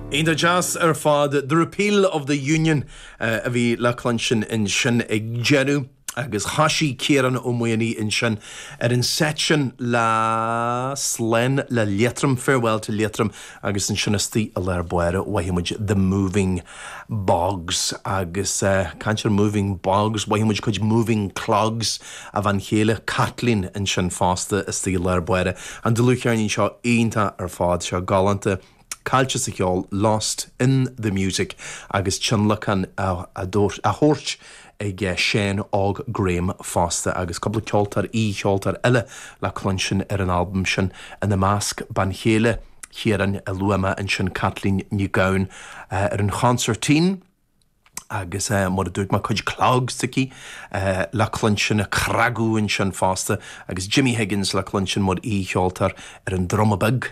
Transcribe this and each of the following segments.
Iontach deas ar fad. The Repeal of the Union a bhí le cluinstin ansin ag deireadh agus thosaigh Ciarán Ó Maonaigh ansin ar an seit sin le Slán le Liatroim, Farewell to Leitrim agus ansin istigh i lár báire mhothaigh muid The Moving Bogs, agus ag caint ar moving bogs, mhothaigh muid cuid moving clogs a bhean chéile, Caitlín, ansin fosta, istigh i lár báire, an dlúthcheirnín seo iontach ar fad seo, galánta, caillte sa cheol, lost in the music, agus tionlacan á thabhairt ag Seán Óg Graham fosta, agus cúpla ceoltóir, aoi-cheoltóir eile le cluinstin ar an albam sin, ina measc, bean chéile Chiaráin, a luaigh mé ansin, Caitlín Nic Gabhann, ar an chonsairtín, agus mar a dúirt mé, cuid clogs aici le cluinstin, ag cnagadh ansin fosta, agus Jimmy Higgins le cluinstin mar aoi-cheoltóir ar an druma beag.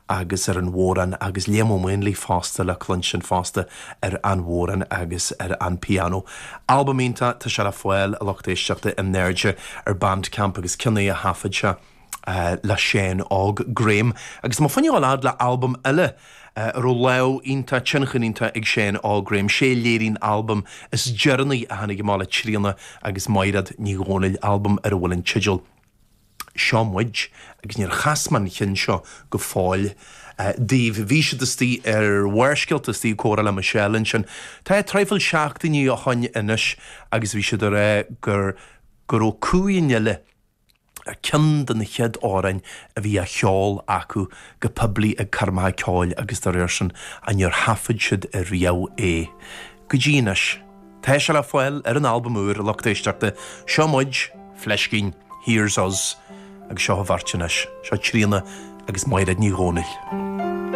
agus ar an bhodhrán agus Liam Ó Maonlaí fosta le cluinstin fosta ar an bhodhrán agus ar an pianó. Albam iontach tá sé le fáil, a lucht éisteachta, in airde ar Bandcamp agus cionn é a thaifead sé le Seán Óg Graham. Agus tá mo phunann á leadd le albam eile a raibh lámh iontach, tionchar iontach ag Seán Óg Graham, 'sé a léirigh an albam is deireanaí a tháinig amach le Tríona agus Maighread Ní Dhomhnaill, albam ar a bhfuil an teideal. Seo muid, agus níor chas mé an cionn seo go fóill daoibh. Bhí siad istigh ar Bharrscéalta, istigh ag comhrá le Michelle ansin, tá é traidhfil seachtainí ó shoin anois, agus bhí siad ag rá gur go raibh Cumha an Fhile ar cheann de na chéad amhráin a bhí á cheol acu go poiblí ag coirmeacha ceoil agus dá réir sin, ach níor thaifead siad riamh é. Go dtí anois. Tá sé le fáil ar an albam úr lucht éisteachta Seo Muid, fleiscín, Here's Us agus seo an bheirt anois. Seo Tríona agus Maighread Ní Dhomhnaill.